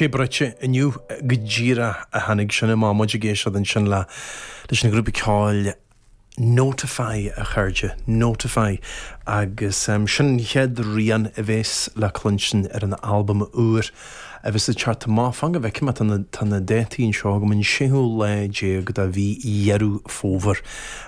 Te bruite inniu go díreach a tháinig sin amach, muid ag éisteacht ansin le leis an ghrúpa ceoil Notify, a chairde, Notify agus sin an chéad rian a bhéas le cluinstin ar an albam úr a bheas ag teacht amach, fan go bhfeicim, tá na, tá na dátaí anseo agam, an séú lá déag de mhí Dheireadh Fómhair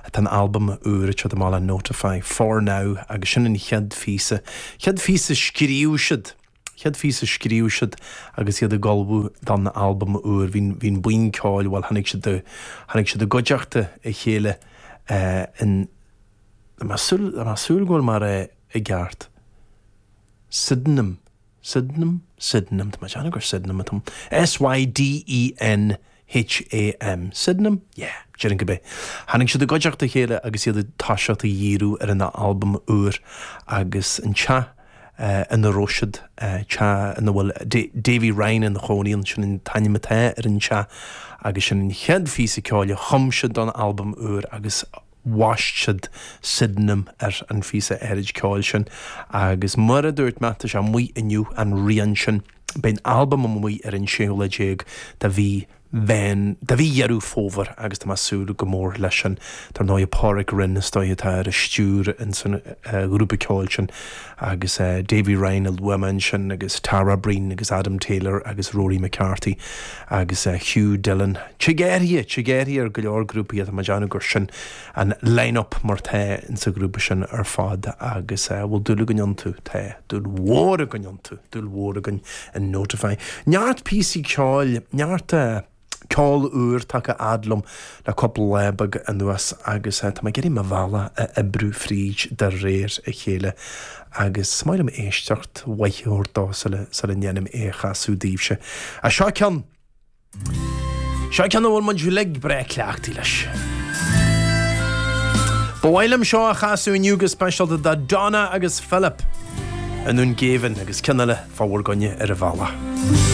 atá an albam úr ag teacht amach le Notify, For Now agus sin an chéad phíosa. Chéad phíosa a scríobh siad. Chéad phíosa a scríobh siad agus iad ag ullmhú don albam úr, bhí an buíon ceoil, bhuel, tháinig siad i, tháinig siad i gcuideachta a chéile in, tá mé ag súil, tá mé ag súil go bhfuil mé á rá i gceart, Sydenham, Sydenham? Sydenham, tá mé ag déanamh gur Sydenham atá ann, S-y-d-e-n. H-a-m. Sydenham? Yeah, déarfainn go b'é. Tháinig siad i gcuideachta a chéile agus iad ag toiseacht a dhíriú ar a n-albam úr agus an teach ina raibh siad, teach ina bhfuil Davy Ryan ina chónaí ann, sin an t-ainm atá ar an teach, agus sin an chéad phíosa ceoil a chum siad don albam úr agus, bhaist siad Sydenham ar an phíosa áirid ceoil sin agus mar a dúirt mé, tá sé amuigh inniu an rian sin. Beidh an albam amuigh ar an 16ú lá de mhí Mheán, de mhí Dheireadh Fómhair agus tá mé ag súil go mór leis sin. Dar ndóigh, Pádraig Rynne is dóigh atá ar an stiúir ins an ghrúpa ceoil sin. agus Davy Ryan a luaigh mé ansin agus Tara Breen agus Adam Taylor agus Rory McCarthy agus Hugh Dillon. Tig éirithe! tig athruithe ar go leor grúpaí ach tá mé ag déanamh gur sin an line-up mar tá insa ghrúpa sin ar fad agus bhfuil dúil againn iontu, tá dúil mhór againn iontu, dúil mhór againn in Notify. Neart píosaí ceoil, neart eh. Ceol úr tagtha fhad liom le cúpla lá beag anuas agus tá mé ag iarraidh mo bhealach a oibriú fríd de réir a chéile agus is maith liom éisteacht mhaith a thabhairt dó sula ndéanaim é a chasadh daoibhse. Seo ceann, seo ceann a bhfuil muid uilig breá cleachtaí leis. Ba mhaith liom seo a chasadh inniu go speisialta do Donna agus Philip i nDún Geimhin agus ceann eile fá bhur gcoinne ar an bhealach.